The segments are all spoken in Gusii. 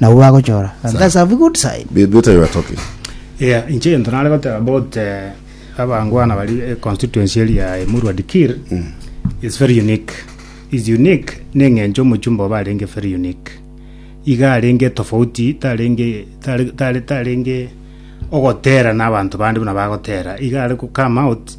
nabwo bagochora and that's a good sign They, they tell you what, okay. Yeah, inche egento nare goteba about eh, abangwana bari eh, constituency eri ya Emurwa Dikir is very unique is unique neng'encho omochumba oba arenge very unique iga arenge tofauti tarenge tare- tare- tarenge ogotera na abanto bande buna bagotera iga are go come out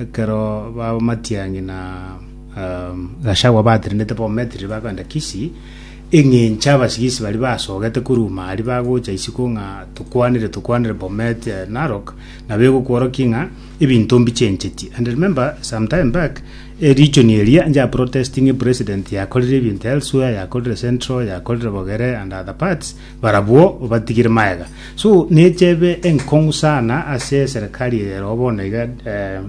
Ekero b'amatiang'i na Gachagua batenenete bamometerire bakogenda Kisii, eng'encho abasigisi baria basogete koruma aria bagocha isiko ng'a tokwanire tokwanire Bomet ya Narok, nabo egokworokia ng'a ebinto mbichencheti. And remember some time back, eh, region eria inche a protesting president yakorire ebinto elsewhere, yakorire Central, yakorire Bogere and other parts, Barabwo obatigire magega. So neche ebe enkong'u sana ase eserekari eye ero bono iga eh,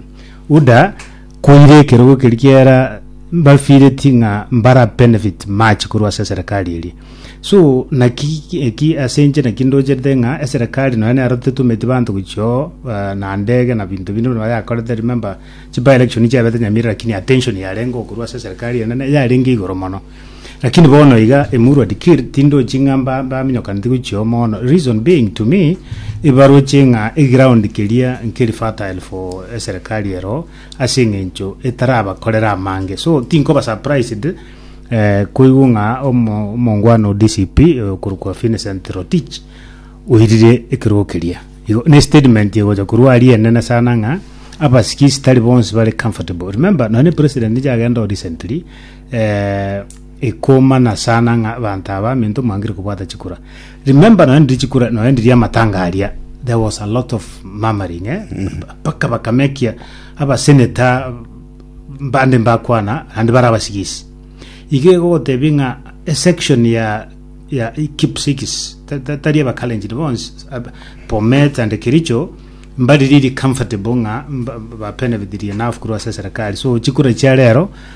UDA koire ekerogo ekeri kiera mbafireti ng'a mbara benefit much korwa ase eserekari eri so naki eki ase inche naki ndocherete ng'a eserekari nonya nero tetumeti banto gochio eh, na ndege na binto binde bono bayakorete remember chiba election chiabete nyamirira lakini attention yarenge korwa ase eserekari enene yarenge igoro mono Lakini bono iga emurwa dikir tindochi ng'a mba- mbaminyokaneti gochia oo mono reason being to me ibaroche ng'a eground keria nkeri fertile for eserekari ero ase eng'encho etarabakorera amange so tinkoba surprised eh, koigwa ng'a omo- omongwana o DCP okorokwa Vincent Rotich oirire ekerogo keria igo ne statement egocha korwa aria enene sana ng'a abasikisi tari bonsi bare comfortable remember nonye president nigo agenda oo recently Eh, ikomana sana ng'a abanto aba minto mwangire kobwata chikura. Remember nonya ndiri chikura, nonya ndiri amatanga aria, there was a lot of murmuring, eh? Mpaka bakamekia abaseneta bande mbakwana, ande bara abasigisi. Iga igogotebi ng'a esection ya ya Kipsigis, ta- ta- tari abakalenjin bonsi, ab- Bomet and Kericho, mbari riri comfortable ng'a mba- babenefitirie enough korwa ase eserekari. So chikura chia rero,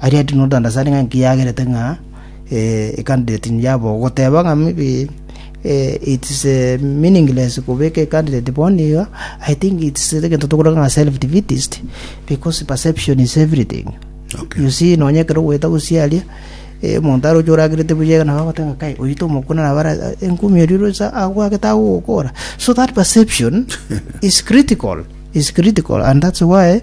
Aria Edwin Odandasaari ng'a inki yagerete ng'a ecandidate yabo goteba ng'a maybe it's meaningless kobeka ecandidate bono iga, I think it's egento tokore ng'a self defeatist because perception is everything. Okay. You see nonye ekero ogoeta gosiaria omonto are ocho oragerete buya iga nabo agoteba kai oyu tomokuna nabo ara engumi erio rosa agwagete agogokora. So that perception is critical is critical and that's why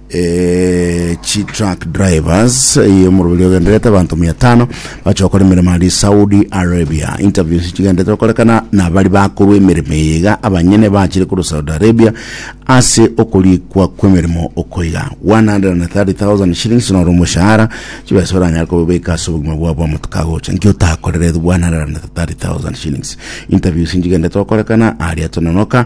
chi truck drivers y'omoroberi ogenderete abanto mia tano bacha gokora emeremo aria saudi arabia interviews chigenderete gokorekana nabari bakorwa emeremo eye iga abanyene bachire korwa saudi arabia ase okorikwa kw'emeremo okoiga 130000 shillings noro omoshahara chibesa oranyare kobeka ase obogima bwabo amatuko agocha nki otakorerete 130000 shillings interviews chigenderete gokorekana aria tononoka